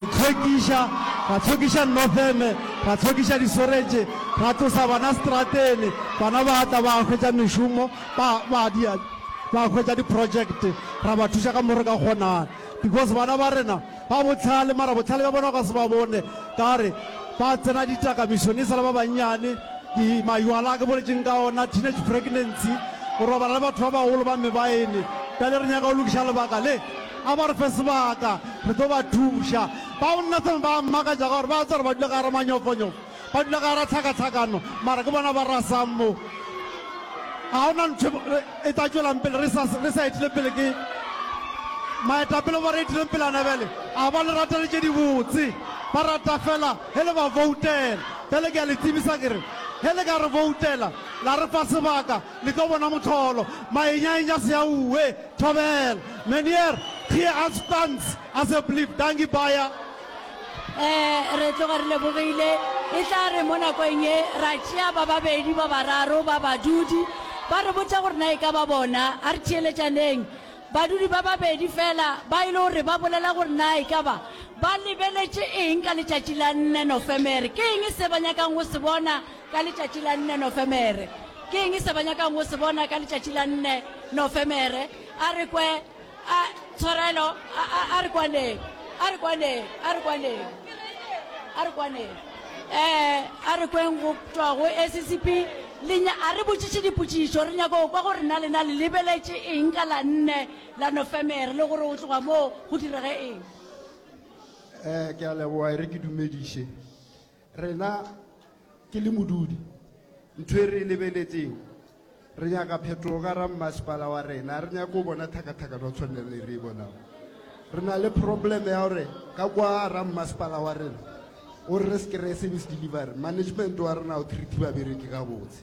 Tlhwekiša, ra tlhwekiša Northeme, ra tlhwekiša disoretše, ra tlosa bana stratene, bana ba tla ba hwetša mešomo, ba, ba dia, ba hwetša diprojekte, ra ba thuša ka mo re ka kgonang, because bana ba rena ba bohlale, mara bohlale bja bona o ka se ba bone ka gore ba tsena ditakamišong e sa le ba bannyane, di, maywala a ke boletšeng ka ona, teenage pregnancy, go robala le batho ba bagolo ba mebaene, bjale re nyaka go lokiša lebaka le. A ba re fe sebaka, re tlo ba thuša. Bao Nathan ba a mmakatša ka gore ba a tseba gore ba dula ka gara manyofonyofo, ba dula ka gara tlhakatlhakano, mara ke bona ba rasang mo. Ga go na ntho e tla tšwelang pele re sa re sa etile pele ke maetapele ba re etileng pele ana bjale a ba le ratele tše dibotse ba rata fela ge le ba voutela bjale ke a le tsebisa ke re ge le ka re voutela la re fa sebaka Le tlo bona mohlolo. Mayenyaenya Seaue, Thobela. Meneer, Thie Asbans, Asseblief, Dankie baie. Ee, re tloga re lebogile. E tla re mo nakong ye ra tšea ba babedi ba bararo ba badudi. Ba re botša gore na e ka ba bona. A re theeletšaneng. Badudi ba babedi feela ba e le gore ba bolela gore na e ka ba ba lebeletše eng ka letšatši la nne Nofemere. Ke eng se ba nyakang go se bona? Ka letšatši la nne Nofemere. Ke eng se ba nyakang go se bona ka letšatši la nne Nofemere? A re kwe, a, tshwarelo, a, a, a re kwaneng, a re kwaneng, a re kwaneng, a re kwaneng. Eh, a re kweng go tšwa go SCP. Lenya, a re botšiše dipotšišo, re nyaka go kwa gore na lena le lebeletše eng ka la nne la Nofemere, le gore go tloga moo go direge eng. Eh, ke a leboga, e re ke dumediše. Rena ke le modudi, ntho e re e lebeletseng, re nyaka phetogo ka ra mmasepala wa rena. Re nyake go bona thakathakano go tshwanela le re e bonang. Re na le problem ya gore ka kwa ra mmasepala wa rena o re re se kry-e service delivery, management wa rena o treat babereki gabotse.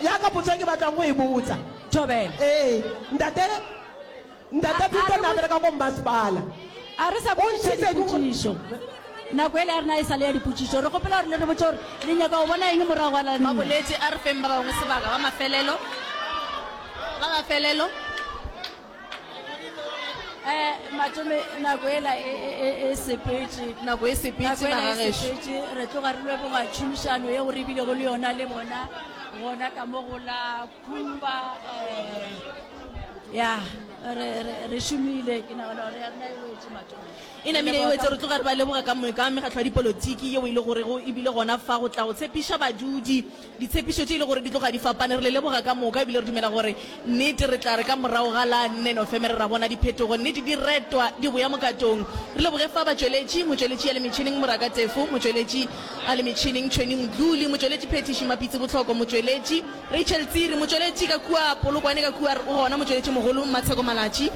ya ka potso e ke batlang go e botsa Thobela. ee ntate ntate pito na bereka ko mmasepala a re sa botšiša dipotšišo nako e le ya rena e sale ya dipotšišo re gopela gore le re botse gore le nyaka go bona eng morago ga lana boletse a re feng ba bangwe sebaka ba mafelelo ba mafelelo eh, matome nako ela e, e, e, e sepetse nako e sepetse magagesepetse re tloga re leboga tšhomišano ye go rebile go le yona le bona gona ka mo go la kumba eh, ya re šomile ke nagana gore ya rena e wetse matome e namile e wetse re tloga re ba leboga ka mekgatlho ya dipolotiki yeo e le gorego ebile gona fa go tla go tshepiša badudi Ditshepišo tše e le gore di tloga di fapane re le leboga ka moka ebile re dumela gore nnete re tla re ka morago ga la nne Nofemere ra bona diphetogo, nnete di retwa di boya mokatong. Re leboge fa batšweletši, motšweletši ya le metšhineng Moraka Tefo, motšweletši a le metšhineng Tšhweni Mdluli, motšweletši phethiši Mapitsi Botlhoko, motšweletši. Rachel Tsiri, motšweletši ka kua Polokwane ka kua o gona, motšweletši mogolo Mmatsheko Malatši,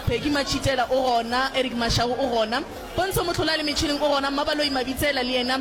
Peggy Matšhitela o gona, Eric Mashago o gona, Pontsho Motlhola a le metšhineng o gona, Mmabaloi Mabitsela le yena.